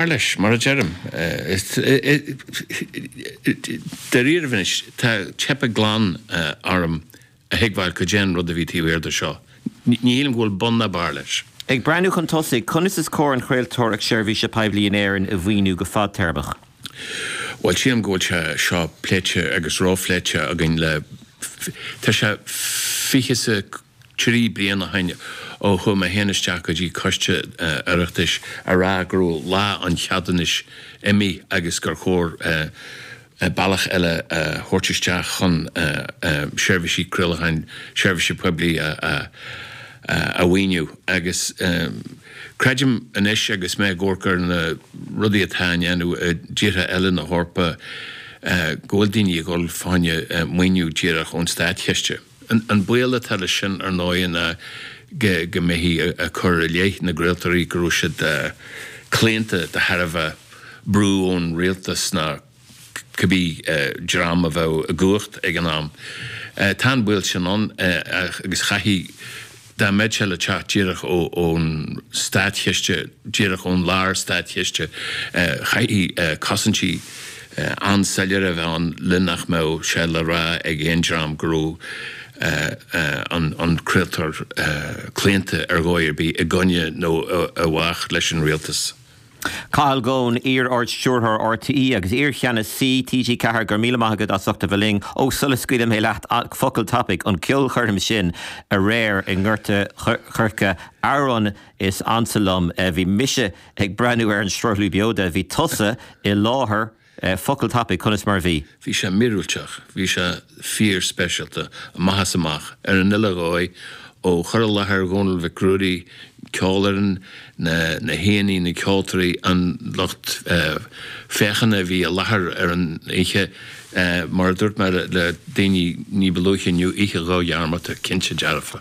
Mar a deirim, dáiríribh anois, tá teipthe glan orm a thuigbheáil cad é an rud a bhí taobh thiar de seo. Ní shílim go bhfuil bun ná barr leis. Ag breathnú chun tosaigh, conas is cóir an chraoltóireacht seirbhíse poiblí in Éirinn a mhaoiniú go fadtéarmach? Bhuel, sílim go bhfuil sé seo pléite agus róphléite againn le, tá sé, fiche sa. Trí bliana ó shin ó chuaigh mé féin isteach go dtí coiste Oireachtais a rá go raibh lá an cheadúnais imithe agus gur chóir bealach eile a thabhairt isteach chun seirbhísí craolacháin seirbhíse poiblí a mhaoiniú. Agus creidim anois agus mé ag amharc ar na rudaí atá á ndéanamh i dtíortha eile na hEorpa go bhfuil daoine ag dhul fá choinne maoiniú díreach ón státchiste. An baol atá leis sin ar ndóigh ná go mbeifí ag cur i leith na gcraoltóirí go raibh siad claonta de thairbhe brú ón rialtas nó cibé dream a bheadh i gcumhacht ag an am. Tá an baol sin ann agus chaithfeadh. Dá mbeadh sé le teacht díreach ón státchiste, díreach ón lár státchiste, chaithfeadh cosaintí an-soiléire a bheith ann le nach mbeadh sé le rá ag aon dream go raibh an craoltóir claonta ar dhóigh ar bith i gcoinne nó i bhfách leis an rialtas. Cathal Goan, Iar-Ardstiúrthóir RTÉ agus iar-Cheannasaí TG4 go raibh míle maith agat as ucht a bheith linn. Ó, sula scaoilfidh mé leat focal tapaidh, an ceolchoirm sin aréir i nGort a' Choirce, amhrán is ansa liom, bhí mise ag breathnú ar an sruthlú beoda, bhí tusa i láthair, Focal tapaidh, conas mar a bhí? Bhí sé míorúilteach, bhí sé fíor-speisialta, amach is amach, ar an uile dhóigh, ó chur i láthair Dhónaill Mhic Ruairí, ceolfhoireann, na haíonna, na ceoltóirí, an lucht féachana a bhí i láthair ar an oíche. Mar a dúirt mé le daoine ní ba luaithe inniu, oíche dhodhearmadta, cinnte dearfa.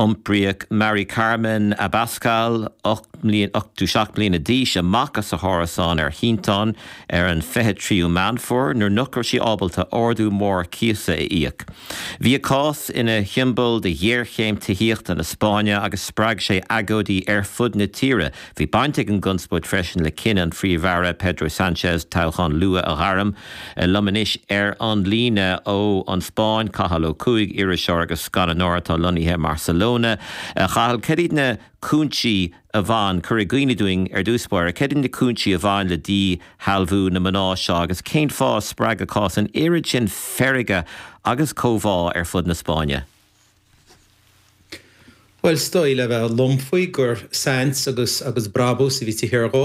Iompraíodh Mari Carmen Abascal, 87 mbliana d'aois, amach as a hárasán ar shínteán ar an 23ú Meán Fómhair nuair nach raibh sí ábalta ardú mór cíosa a íoc. Bhí a cás ina shiombail de ghéarchéim tithíochta na Spáinne agus spreag sé agóidí ar fud na tíre Bhí baint ag an gconspóid freisin le cinneadh an Phríomh-Aire Pedro Sanchez toghchán luath a ghairm. Liom anois ar an líne ó An Spáinn, Cathal Ó Cuaig, iriseoir agus scannánóir atá lonnaithe i mBarcelona. A Chathail, cad iad na cúinsí a bhain, cuir i gcuimhne dúinn ar dtús báire, cad iad na cúinsí a bhain le díshealbhú na mná seo agus cén fáth a spreag a cás an oiread sin feirge agus comhbhá ar fud na Spáinne? Bhuel, is dóigh le bheith lom faoi gur saint agus agus brabús a bhí taobh thiar dhó.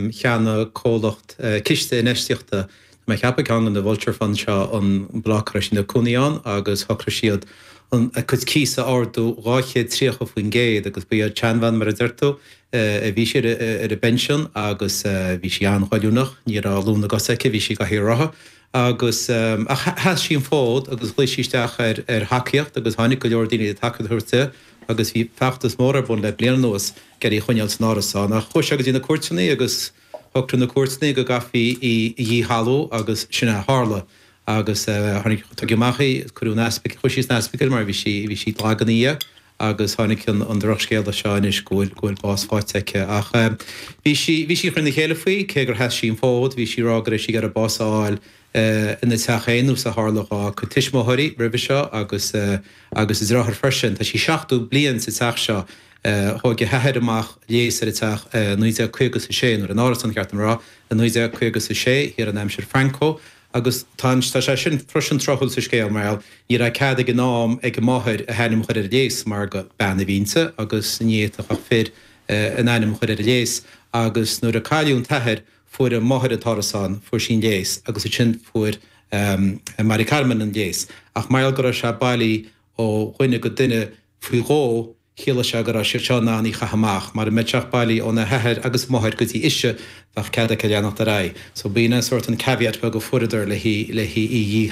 Cheannaigh comhlacht ciste infheistíochta, tá mé ag ceapadh ceann de na vulture funds seo, an bloc a raibh siad ina cónaí ann agus shocraigh siad an, a cuid cíos a ardú dhá chéad tríocha faoin gcéad agus ba í an tseanbhean mar a deir tú, bhí sí ar a bpension agus bhí sí an-ghoilliúnach, ní raibh lúth na gcos aici, bhí sí i gcathaoir rotha agus ach sheas sí an fód agus ghlaoigh sí isteach ar ar thacaíocht agus tháinig go leor daoine le tacaíocht a thabhairt di agus bhí feachtas mór ar bun le bliain anuas ag iarraidh í a choinneáil san árasán ach chuaigh sé go dtí na cúirteanna agus shocraigh na cúirteanna go gcaithfí í a dhíshealbhú agus sin a tharla agus tháinig tugadh amach í agus cuireadh an ospidéal chuaigh sí an ospidéal mar bhí sí bhí sí lag ina dhiaidh. agus tháinig an drochscéala seo anois go bhfuil bás faighte aici ach bhí sí bhí sí ag cur in iúl faoi cé gur sheas sí an fód bhí sí ag rá go raibh sí ag iarraidh bás a fháil ina teach féin nós a tharla dhá cuid tuismitheoirí roimhe seo agus agus a deartháir freisin tá sí 70 bliain sa teach seo thóg a hathair amach léas ar an teach i 1956 nuair an t-árasán ba cheart dom a rá i 1956 thiar in aimsir Franco Agus tá sé sin freisin tráthúil sa scéal mar gheall, ní raibh cead ag an am ag a máthair a hainm a chur ar an léas mar gur bean a bhí inti agus ní fhéadfadh ach fir a n-ainm a chur ar an léas agus nuair a cailleadh an t-athair fuair a máthair an t-árasán, fuair sí an léas agus ansin fuair Mari Carmen an léas ach mar gheall go raibh sé bailí ó dhuine go duine faoi dhó, Chiallaigh sé go raibh siad seo in ann í a chaitheamh amach. Mar dhá mbeadh an teach bailí óna hathair agus a máthair go dtí ise, bheadh cead aici a leanacht ar aghaidh. So b'in é sórt an caveat beag a fuaireadar le í.